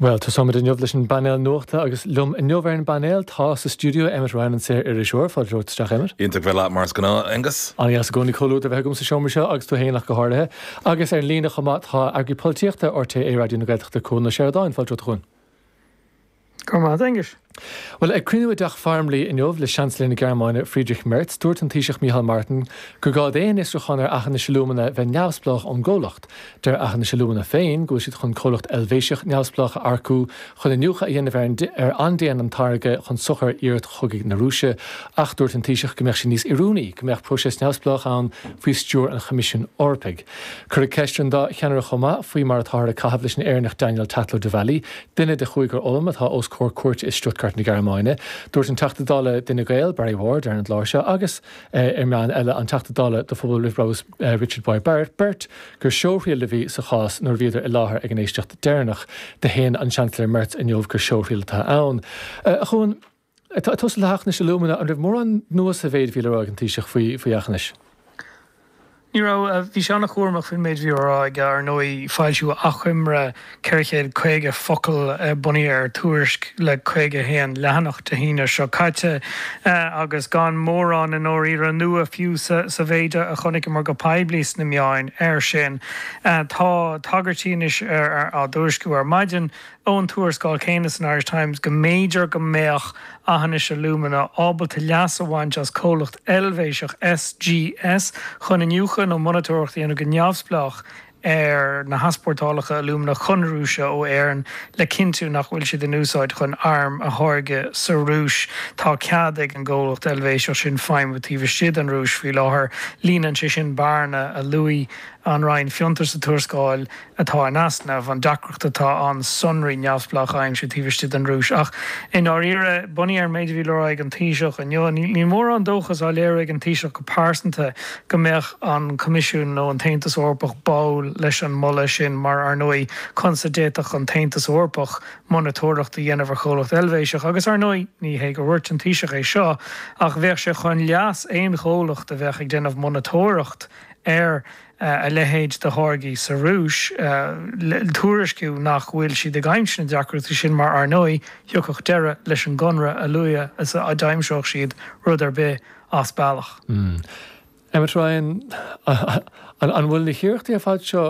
Bhuel, tosóimid inniu leis an bpainéal nuachta agus liom inniu ar an bpainéal tá sa stiúideo Emmet Ryan, an saoririseoir. Fáilte romhat isteach, Emmet. Iontach bheith leat mar is gnáth, Aengus. Ana-dheas i gcónaí comhluadar a bheith agam sa seomra seo agus tú féin ach go háirithe. Agus ar an líne chomh maith tá Eagarthóir Polaitíochta RTÉ Raidió na Gaeltachta, Cuan Ó Seireadáin. Fáilte romhat, a Chuan. Go raibh maith a't, Aengus. Bhuel, ag cruinniú i dTeach Farmleigh inniu le Seansailéir na Gearmáine, Friedrich Merz, dúirt an Taoiseach Micheál Martin gur gá d'aon fhiosrúchán ar Aughinish Alumina bheith neamhspleách ón gcomhlacht. Deir Aughinish Alumina féin go bhfuil siad chun comhlacht Eilvéiseach neamhspleách a earcú chun iniúchadh a dhéanamh ar ar an ndéanann an táirge chun sochair iarracht chogaidh na Rúise ach dúirt an Taoiseach go mbeadh sé níos oiriúnaí go mbeadh próiseas neamhspleách ann faoi stiúir an Choimisiúin Eorpaigh. Cuireadh ceist ar an dá cheannaire chomh maith faoi mar atáthar ag caitheamh leis an Éireannach Daniel Tatlow-Devally, duine de chúigear Ulm atá os comhair cúirte i Stuttgart na Gearmáine. Dúirt an Teachta Dála d'Fhine Gael, Barry Ward, ar an gclár seo agus ar meáin eile, an Teachta Dála do Phobal Roimh Bhrabús Richard Boyd Barrett, beirt gur seóthriail a bhí sa chás nuair a bhíodar i láthair ag an éisteacht deireanach. Do shéan an Seansailéir Merz inniu gur seóthriail atá ann. Ag tosú le hAughinish Alumina, an raibh mórán nua sa mhéid a bhí le rá ag an Taoiseach faoi faoi Aughinish? Ní raibh. Bhí sé an-chúramach faoin méid a bhí le rá aige. Ar ndóigh, foilsíodh achoimre 450 focal bunaithe ar tuairisc le 51 leathanach Dé hAoine seo caite agus gan mórán i ndáiríre nua fiú sa mhéid a chonaiceamar go poiblí sna meáin air sin. Tá tagairtí anois á dtuairisciú ar maidin ón tuarascáil chéanna san Irish Times go mb'fhéidir go mbeadh Aughinish Alumina ábalta leas a bhaint as comhlacht Eilvéiseach SGS chun iniúchadh nó monatóireacht a dhéanamh go neamhspleách ar na heaspórtálacha alúmana chun Rúise ó Éirinn le cinntiú nach bhfuil siad in úsáid chun arm a tháirgeadh sa Rúis. Tá cead ag an gcomhlacht Eilvéiseach sin feidhmiú taobh istigh den Rúis faoi láthair. Líonann sé sin bearna a luaigh an Roinn Fiontar sa tuarascáil, atá in easnamh, an deacracht atá ann sonraí neamhspleácha a aimsiú taobh istigh den Rúis. Ach i ndáiríre, bunaithe ar an méid a bhí le rá ag an Taoiseach inniu, níl mórán dóchas á léiriú ag an Taoiseach go pearsanta go mbeadh an Coimisiún nó an tAontas Eorpach báúil leis an moladh sin mar, ar ndóigh, conas a d'fhéadfadh an tAontas Eorpach monatóireacht a dhéanamh ar chomhlacht Eilvéiseach? Agus, ar ndóigh, ní hé gur dhúirt an Taoiseach é seo, ach bheadh sé chun leas aon chomhlacht a bheadh ag déanamh monatóireacht ar a leithéid de tháirgí sa Rúis, tuairisciú nach bhfuil siad ag aimsiú aon deacrachtaí sin mar, ar ndóigh, thiocfadh deireadh leis an gconradh a luaithe is a d'aimseodh siad rud ar bith as bealach. Emmet Ryan, An bhfuil na hiarrachtaí ar fad seo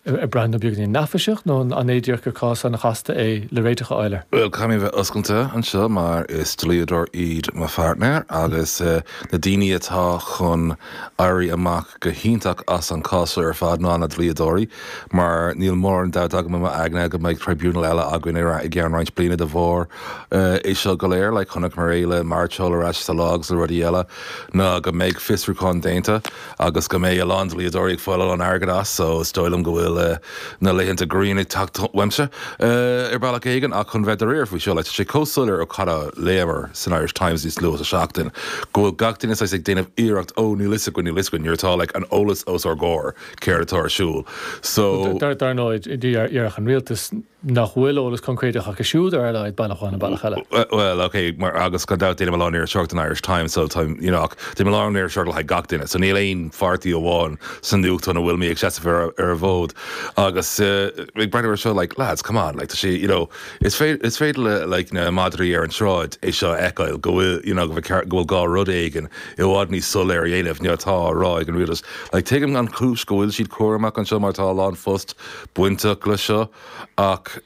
An mbraitheann an beagáinín neafaiseach nó an é díreach gur cás an-chasta é le réiteach a fháil air? Bhuel, caithfidh mé bheith oscailte anseo mar is dlíodóir iad mo pháirtnéir agus na daoine atá chun éirí amach go hiontach as an cás seo ar fad ná na dlíodóirí mar níl mórán dabht agam i m'aigne go mbeidh tribunal eile againn i gceann roinnt bliana de bharr é seo go léir. Chonaiceamar é le mairteoil ar ais sa lá agus le rudaí eile ná go mbeidh fiosrúchán déanta. agus go mbeidh a lán dlíodóirí ag fáil a lán airgead as so is dóigh liom go bhfuil na laethanta grian ag teacht uaimse ar bealach éigin ach chun bheith dáiríre faoi seo, tá sé chomh soiléir ó cad a léamar san Irish Times níos luaithe sa seachtain go bhfuil gach éinne saghas ag déanamh iarracht oh níl 'fhios againn, níl 'fhios againn nuair atá like an eolas os ár gcomhair céard atá ar siúl so. Dar ndóigh, déarfadh an rialtas nach bhfuil eolas concréideach acu siúd ar a laghad, bealach amháin nó bealach eile. Bhuel, ok, mar, agus gan dabht déanaim a lán iriseoireacht don Irish Times, so tá, you know, ach déanaim a lán iriseoireacht le haghaidh gach duine, so níl aon pháirtí amháin sa nuachtán a bhfuil mé ag seasamh ar, ar a bhfód. Agus eh, ag breathnú ar seo, like, lads, come on, like, tá sé, you know, is féidir, is féidir le, like, na madraí ar an tsráid é seo a fheiceáil, go bhfuil, you know, go bhfuil gá rud éigin i bhfad níos soiléir a dhéanamh ná atá á rá ag an rialtas. Like, tuigim an chúis go bhfuil siad cúramach anseo mar tá a lán phost, bainteach leis seo ach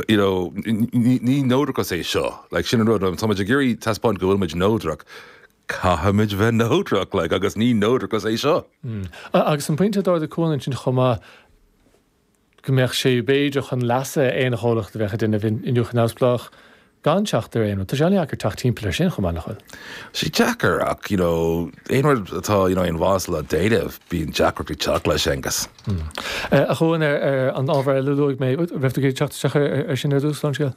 you know ní ní neodrachas é seo. Like sin an rud má tá muid ag iarraidh taispeáint go bhfuil muid neodrach, caithfimid bheith neodrach like agus ní neodrachas é seo. A agus an pointe a d'ardaigh Cuan ansin chomh maith go mbeadh sé b'fhéidir chun leasa aon chomhlacht a bheadh ag déanamh iniúchadh neamhspleách Gan teacht ar aon rud, tá sé an-deacair teacht timpeall air sin chomh maith nach bhfuil. Tá sé deacair ach you know aon rud atá you know aon mhaith le déanamh bíonn deacrachtaí ag teacht leis Aengus. A Chuan, ar an ábhar eile a luaigh mé, raibh tú ag iarraidh teacht isteach air sin ar dtús, Seán Scéal?